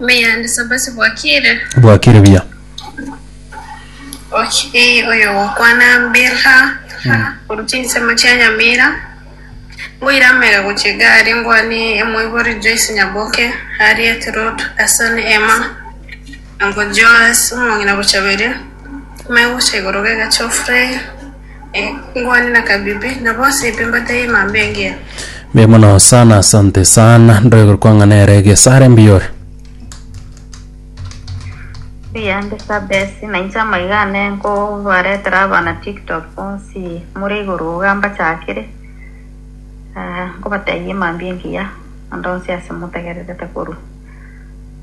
Meyande sabasi bwakire. Bwakire buya. Ochi oyo gokwana mbirha korwa chinsemo chia Nyamira, ngoire amaiga gochia egari ngwane emoibori Joyce Nyaboke Harriet Ruth Asani Emma Uncle Joas omong'ina gochaberia, amaiga gocha igoro g'egachi Ofrey, Engwani na kabibi, na bonsi ebi mbataiyo emambia engiya. Mbuya mono sana asante sana ndoigwe kwang'a nere gesare mbiyore Mbuya mbisa besi, na inche amaiga ane nkobaretera abana tiktok bonsi more igoro iga mbachakire ah, nkobataiyo emambia engiya onde onsi ase motegererete korwa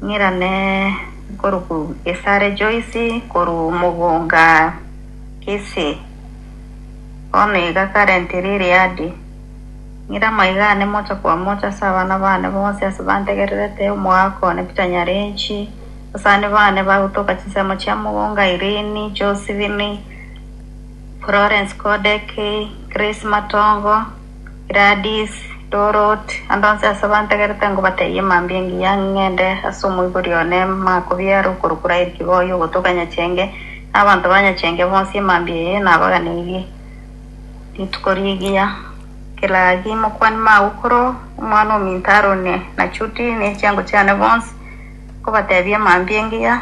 ng'irane korwa ku Gesare Joyce, korwa Mugunga. Ase bono iga karenti riri aadi, ng'ire amaiga aane mocha kwa mocha ase abana baane bonsi ase bantegererete, omogaaka one Peter Nyarenchi, abasani baane bagotoka chinsemo chia Mugunga, Irene, Josephine, Florence Kodeki, Grace Matongo, Gladys, Dorot, ande onsi ase abantegerete ngobatebie mambia engiya ng'ende ase omoibori one Maakobia ere okorokwa Rael Kiboi ogotoka Nyachenge na abanto ba Nyachenge bonsi emambia eye nabaganeirie rituko rigiya. Gladys, Mokwani mago koro omwana ominto arone na Judy ne chiango chiane bonsi ngobatebie mambia engiya.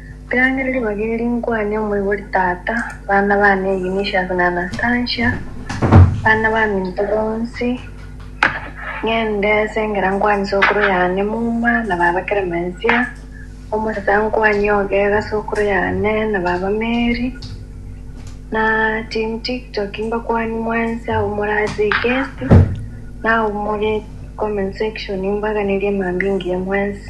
Riang'ereri bageri nkwane omoibori tata, bana bane Eunicius na Anastasia, bana baminto bonsi, ng'ende esengera nkwane sokoro yane Muma na baba Clemensia, omosacha nkwane ogega sokoro yane na baba Mary, na team tiktok mbakwani mwensi abwo more ase egesti na abwo more comment section mbaganerie mambingiya mwensi.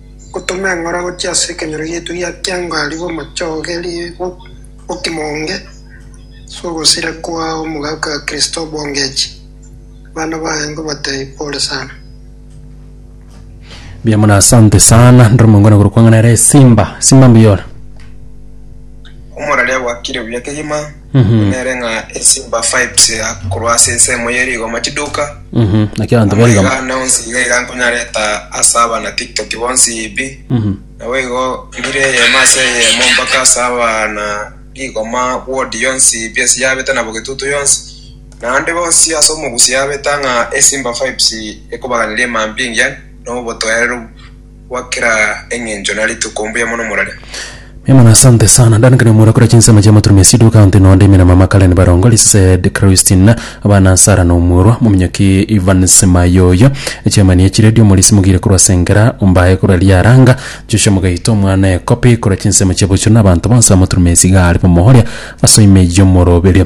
Gotoma eng'ora gochia ase ekenyoro giaito gia kiangari bw'omochogeri bw'okimo onge ase ogosira kwa omogaka Kristobo Ngechi. Abana baye nkobatebia pole sana. Mbuya mono asante sana ndire omongwana korwa kwang'ana ere simba simba mbuyora Omoraria gwakire buya kegima. Buna nere ng'a esimba fives iga korwa ase ensemo ye rigoma chiduka, Mhm. Naki abanto ama barigoma. iga nonsi iga iga nkonyareta ase abana tiktok bonsi yibi, Mhm. naboigo mbire eyemo ase eyemo mpaka ase abana rigoma ward yonsi yibi ase yabete nabo getutu yonsi, naende bonsi ase omogusi yabeta ng'a esimba fives ekobaganiria emambia engiya na obotoereru Kwa kera engencho na rituko mbuya mono morare. Mbuya mono asante sana Dan kare mura kora chinsemo chia moturumia sidu county no ndimina mama Karen Barongo Lised Christine abana Sarah no mworwa mominyoki Evans Mayoyo chairman ye chiredio Morisi Mugire korwa Sengera Ombaye korwa Liaranga Joshua Mugaito omwana Ekopi kora chinsemo chia bochuro na abanto bonsi ba moturumia isigare bomohoria ase oime yomoroberio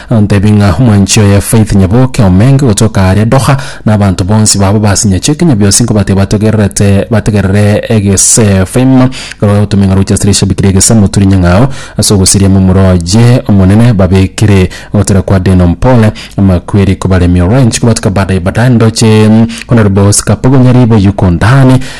Nantebie ng'a omwanchi oye Faith Nyaboke omenge gotoka aria Doha, na abanto bonsi babo basinyache kinya biosi nkobate batogererete bategerere egesefm korwa otomeng'a roche ase rishabi kiria egesa moturi nyang'ao ase ogosiria momura oye omonene babekire ogotera kwa Deno Mpole amakweri kobaremia orange kobatuka badaye badaye ndoche kona ribogosi kapogo nyaribo yuko ndani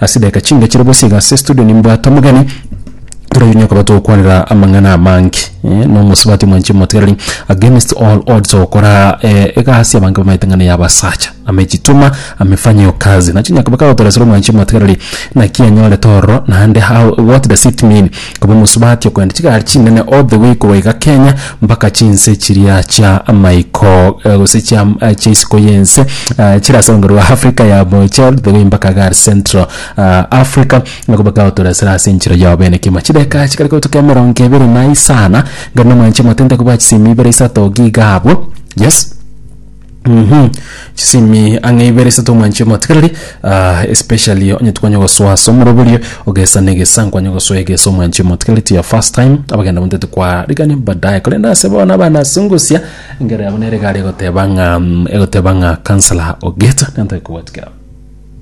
Ase edageka chinke chire bosio iga ase estudio nimbwate omogeni, tore oyo niokaba togokwanera amang'ana amange na omosubati omwanchani omotigareri against all odds ogokora egasi abange bamaete ng'a neya abasacha amejituma amefanyio kazi. Nachi niokaba kagotoresera omwanchani omotigareri naki anyorete ororo naende how what does it mean. Koba omosubati okogenda chigari chinene all the way korwa iga Kenya mpaka chinse chiria chia maiko eh, gose chia eh, chia isiko y'ense eh, chire ase rogendo rwa Africa ya boche all the way mpaka iga are Central ah, Africa na koba kagotoresera ase enchero yao bene kimo chideka chikare kotuka emerongo ebere na isana ngari nomanche motente kobwa chisemi ibere isato giga abwo yes Mhm. Chisimi ang'e ibere ase tomwanche omotikereri ah, especially onye twanye gosoa ase omoroberio ogesa na egesa nkwanye gosoa egesa omwanche omotikereri to your first time abagenda bonto tikwarigani baadaye korende ase bono abana ase ngosia engere yabo nere egare egoteba ng'a mm, egoteba ng'a counselor ogete nantake kobwatia kera